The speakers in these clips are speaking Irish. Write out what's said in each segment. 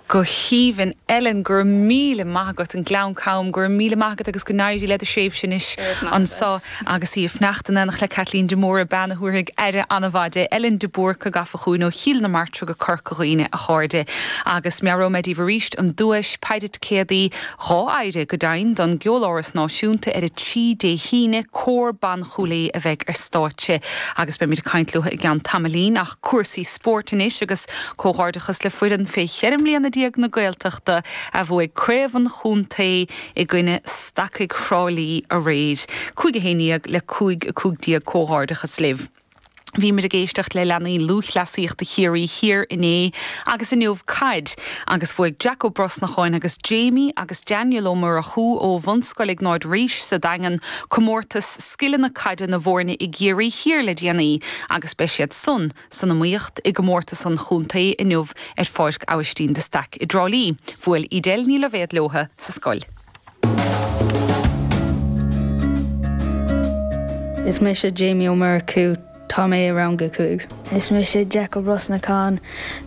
go haoibhinn. Ellen, go raibh míle maith agat. An Gleann Cam, go raibh míle maith agat agus go n-éirí le do thréimhse anois anso agus í ag fanacht in éineacht le Caitlín de Mórdha, bean a thabharfaidh aire an-mhaith di. Ellen de Búrca gafa chugainn ó Chill na Martra go Corca Dhuibhne, a chairde. Agus meabhróidh mé daoibh arís an duais, péire ticéadaí, dhá phéire go deimhin don gCeoláras Náisiúnta ar a trí Dé hAoine, Cór Ban Chúil Aodha a bheidh ar stáitse agus beimid ag caint leotha i gceann tamaillín. Cúrsaí spóirt anois agus comhghairdeachas le foireann fé cheithre mbliana déag na Gaeltachta a bhuaigh craobh an chontae i gcoinne Stacaigh Thrá Lí aréir. Cúig a haon déag le cúig a cúig déag comhghairdeachas libh. Bhíomar ag éisteacht le leanaí lúthchleasaíochta Chiarraí Thiar inné agus inniu caid agus bhuaigh Jack Ó Brosnacháin agus Jamie agus Daniel Ó Murchú ó Bhunscoil Iognáid Rís sa Daingean comórtas scileanna caide na bhfóirne i gCiarraí Thiar le déanaí agus beidh siad san san iomaíocht i gcomórtas an chontae inniu ar Pháirc Aibhistín de Staic i dTrá Lí. Bhuail Edel Ní Loibhéad leotha sa scoil. Is mise Jamie Ó Murchú. Tá mé i rang a cúig. Is mise Jack Ó Brosnacháin.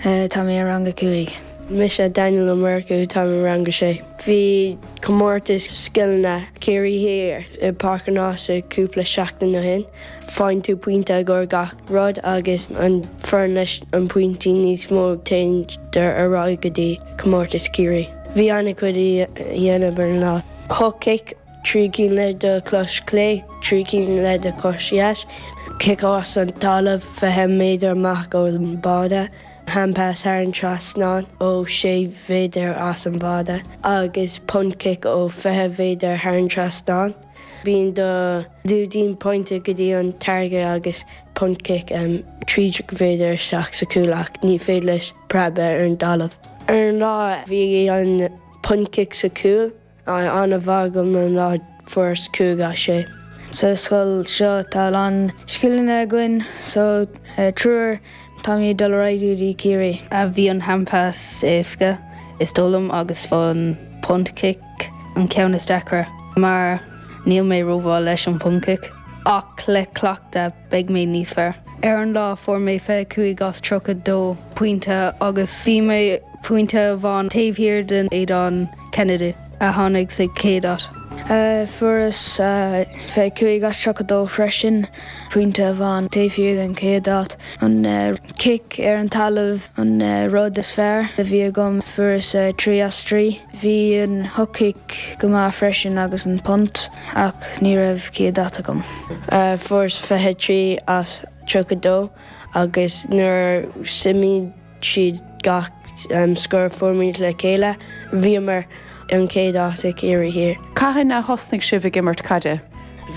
Tá mé i rang a cúig. Mise Daniel Ó Murchú. Tá mé i rang a sé. Bhí comórtas scileanna Ciarraí Thiar i Páirc an Ása cúpla seachtain ó shin. Faigheann tú pointe i gcomhair gach rud agus an foireann leis an pointí níos mó téanndar ar aghaidh go dtí comórtas Ciarraí. Bhí ana chuid a dhéanamh ar an lá. Hook kick trí cinn le do chos clé, trí cinn le do chos dheas, cic as an dtalamh 20 méadar amach ón bháide, handpass thar an trasnán ó 6 mhéadar as an bháide, agus punt kick ó 20 mhéadar thar an trasnán. Bíonn do lúidín pointe go dtí an target agus punt kick 13 méadar isteach sa chúl ach ní féidir leis preab ar an dtalamh. Ar an lá, bhí an punt kick sa chúl. an-mhaith agam an lá Fuaireas 5 as 6. Sa scoil seo tá a lán scileanna againn so triúr táimid ag dul ar aghaidh go dtí Ciarraí. Bhí an handpass éasca is dóigh liom agus an punt kick an ceann is deacra mar níl mé rómhaith leis an punt kick ach le cleachtadh, beidh mé níos fearr. Ar an lá, fuair mé 25 as 32 pointe agus bhí mé pointe amháin taobh thiar den Aodán Kennedy, a tháinig sa chéad áit. Fuaireas 25 as 32 freisin, pointe amháin taobh thiar den chéad áit. An cic ar an talamh an rud is fearr a bhí agam, fuaireas 3 as 3. Bhí an hook-kick go maith freisin agus an punt. Ach ní raibh céad áit agam. Fuaireas 23 as 32 agus nuair a suimigh siad gach scór a fuairimid le chéile, bhíomar an chéad áit i gCiarraí Thiar. Cathain a thosnaigh sibh ag imirt caide?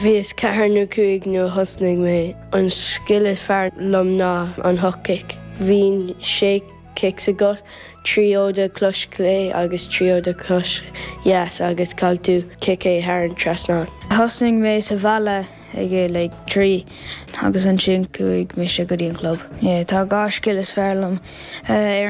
Bhíos ceathair nó cúig nuair a thosnaigh mé. An scil is fearr liom ná an hook kick. Bhíonn sé. cics agat, trí ó do chois chlé agus trí ó do chois dheas agus caithfidh tú ciceáil thar an trasnán. Thosnaigh mé sa bhaile ag a like trí agus ansin chuaigh mise go dtí an chlub. Yeah tá dhá scil is fearr liom ar an.